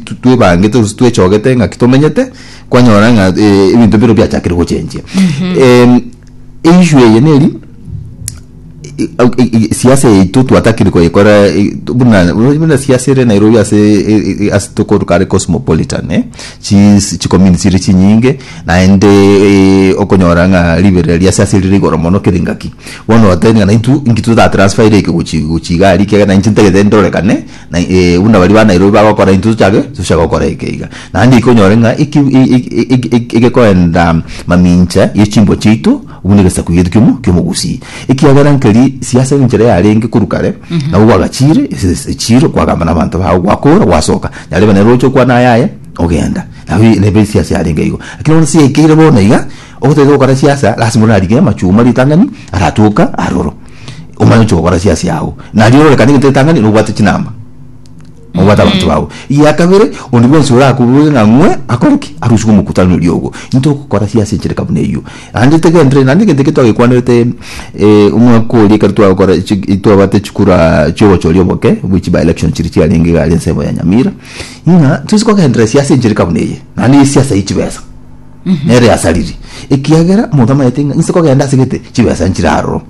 tu- twebangete gose twechogete ng'aki tomenyete kwanyora ng'a eh, ebinto biro biachakire gochenjia Em, issue eye neri i- au- i- i- siasa yaito twatakire koyekora i- tu- buna buna siasa ere nairobi ase e- e- ase tokoru kare cosmopolitan eh, chis- chicommunity chire chinyinge naende eh, okonyora ng'a riberera ria siasa rire igoro mono kere engaki bono oteba ng'a naintwe inki totatransferire eke gochi gochi iga aria ekiagera nainche ntagete ndorekane Na eh, buna baria ba Nairobi bagokora intwe tochake tocha gokora eke iga. Naende ikonyore ng'a eki e- e- e- e- e- egekoenda mamincha ye chimbwa chiaito buna egesaku giaito kiomo kiomogusii. Ekiagera nkeri siasa enchera yarenge korwa kare, nabo gwagachiire ese echiiro kwagamba nabanto bago gwakora gwasoka. Nyarebe nere oche okwana ayaye ogenda. Nabo nebe siasa yarenge igo. Lakini bono ase ekeire bono iga. Ogotogia gokora siasa lasima orarige amachuma ritangani aratoka aroro omanye oche gokora siasa yago nario ororekane egento ritangani nobwate chinamba nobwate abanto bago eya kabere onde bwensi orakoboige ng'a ng'we akore ki aruswe omokutano oria ogo into okokora siasa enchereka buna eyio ande tegendereri naende egento ekio twagekwanerete eh omwaka oria ekero twagokora chik twabate chikura chiobochori oboke bwe chi by elections chiria chiarenge igare ensemo ya nyamira ng'a tosi kogenderera siasa enchereka buna eye naende siasa ye chibesa. nere yasariri, ekiagera omonto amaete ng'a inse kogenda asegete chibesa nchire aroro.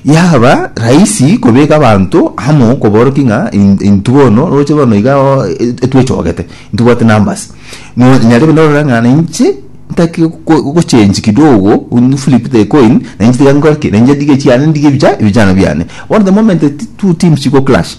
Yaba rahisi kobeka abanto amo koborokia ng'a in- intwe bono roche bono iga oo, e- etwechogete, ntibwate numbers. No- nyarebe norora ng'a nainche ntaki go- gochange kidogo, un- flip the coin, nainche tiga nkore ki, nainche ndige chiane ndige ebicha- ebichano biane. Bono the moment ti- two teams chigo clash,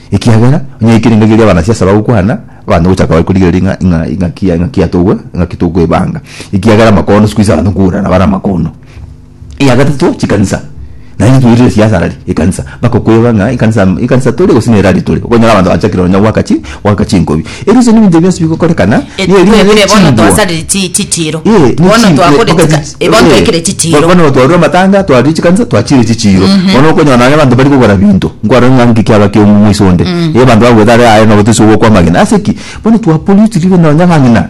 Ekiagera onye eke ningaki eria abanasiasa bagokwana, abanto ngocha koba bari korigereria ng'a ing'a ing'aki ya ing'aki yatogwe ing'aki tokoebanga, ekiagera amakono sikuisi abanto nkoburana nabare amakono. Eya gatato, chikanisa. Naende ntoirire siasa ara ri ekanisa, bakokoeba ng'a ekanisa ekanisa tore gose nere aritore. Okonyora abanto bachakire nonya goaka chi goaka chinkobi. Erio se nebinto bionsi bigokorekana, nigo eriina Twebire rie bono chingwa. twasarire chi- chitiro. Eh, ne Bono chingwe, twakore oka- chika- chi- eh, bono eh, twekire chitiro. bo- bono twarure amatanga twarire chikanisa twachire chichiro bono okonyora nonye abanto bari kogora binto nkwarora ng'a nki kiaba kia omomisa onde eh abanto bagwete are aye nabo tosi ogokwa amagena ase ki bono twa pollute ribe nonye ng'a ng'ina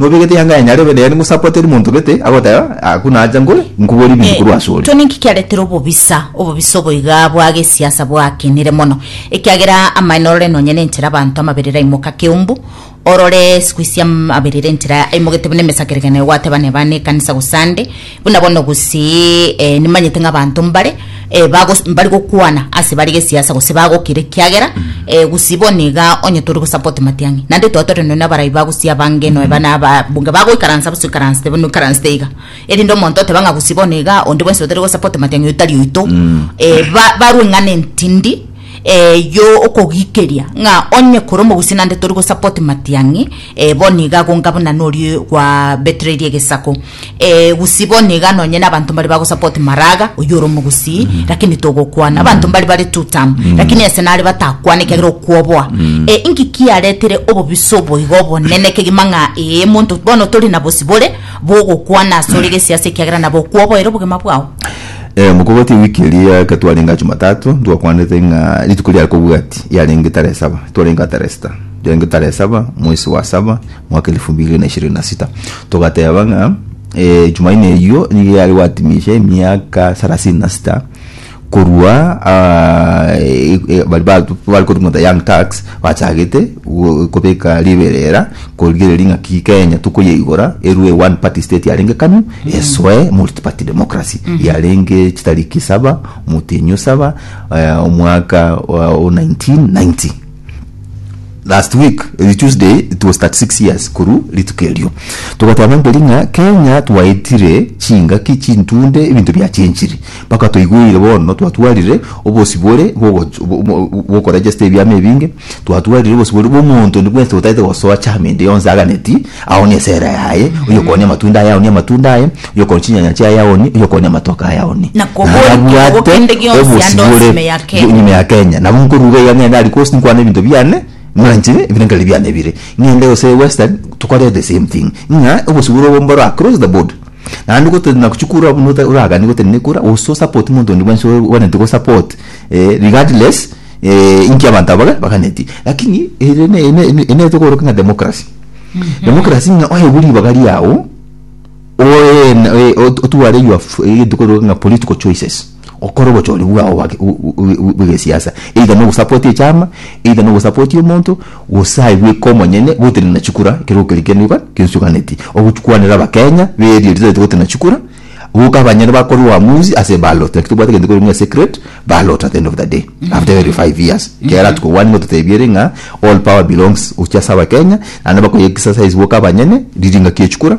Nobegete yanga ya nyarebe nere ngosapwa teri monto gete agoteba ah ku nacha ngore nkuborie ebinto korwa ase ore. To ninki kiaretire obobisa? Obobisa oboiga bwa gesiasa bwakinire mono, ekiagera amaene orore nonya nenchera abanto amaberero aimoka keumbu, orore sikuisi amaberero enchera aimogete buna emesakeregano ya gwateba neba nekanisa gose ande, Buna bono gose eh, nimanyete ng'a abanto mbare eh, bagos- mbari gokwana ase bare gesiasa gose bagokira ekiagera eh, gose bono iga onye tori gosupport matiang'i naende twaba tore nonya abarai ba gose abange nonya bana ababunge bagoikaransa bose oikaransete bono oikaransete iga erinde omonto oteba ng'a gose bono iga onde bwensi otari gosupport matiang'i oyio tari oito eh, ba- barwe eng'ana entindi Eyio okogikeria ng'a onye kore omogusii nande tori gosupport Matiang'i, eh, bono iga agonga buna norie gwa betrayed egesako, eh, gusii bono iga nonye na abanto mbare bagosupport Maraga, oyio ore omogusii, lakini togokwana, abanto mbare bare two term, lakini ase nare batakwane ekiagera okwoboa, eh, inki kiaretire obobisa obo iga obonene kegima ng'a eh, monto bono tori na bosibore bogokwana asore gesiasa ekiagera nabo okwoboera obogima bwao. Eh, mokogoti ewiki eria eke twarenge Jumatatu twakwanete ng'a rituko riare kobwati yarenge tarehe saba twarenge ataresta yarenge tarehe saba mwesi wa saba mwaka elfu mbili na ishirini na sita togateba ng'a eh, Jumaine eyio nigo yare gwatimisha emiaka sarasini na sita korwa ah, e- e- bari batu- bari korwa the young tax Bachagete kobeka riberera korigereria ng'aki Kenya tokoyeigora erue one party state yarenge kanu esoe multi party democracy yarenge chitariki saba omotenyo saba eh, omwaka wa 1990 last week eh, tuesday it was 36 years koru rituko erio togateba ngeri ng'a kenya twaetire chingaki chintunde ebinto biachenchire Mpaka toigweire bono twatwarire obosibore bw'ogoch- bw- bw- bw'okoregesta ebiama ebinge, twatwarire obosibore bw'omonto onde bwensi otaete gosoa chiama ende yonsi aganeti, aonie esera yaye, oyokooni amatunda aye aonie amatunda aye, oyokooni chinyanya chiaye aonie, oyokooni amatoke aye aonie. Na kobori Naye kiungo abwate kende gionsi ande obosibore onsi ime ya Kenya. ime ya Kenya. Nabo nkoruga iga ng'ende aria coast nkwane ebinto biane, mwanchi, ebire nkare biane bire. Ng'ende gose western, tokore the same thing. Ng'a obosibore obo mboro across the board. Naende gotari na gochia kura buna ota- oragani gotari na ekura gose osupport monto onde bwensi o- oganeti gosupport eh, regardless eh, inki abanto aba baga- baganeti lakini ere ne- ne- ne- ene tokoroka ng'a democracy democracy ng'a oewu ribaga riago oe- na- oe- ot- otware your f- egento kogera ng'a political choices gokora obochori bwao bwa ki- bu- bu- bu- bu- bw'egesiasa either nogosapoti echama either nogosapoti omonto gose aye bweka omonyene gotenena na chikura ekero okeria kende oka kesuganeti ogokwanera abakenya beria ritareti gotena chikura boka abanyene bakore uamuzi ase eballot like tobwate egento kore ng'a secret ballot at the end of the day after every five years kera tokobwani ng'a totebi ere ng'a all power belongs gochia ase abakenya naende bakoye exercise boka abanyene riringaki echikura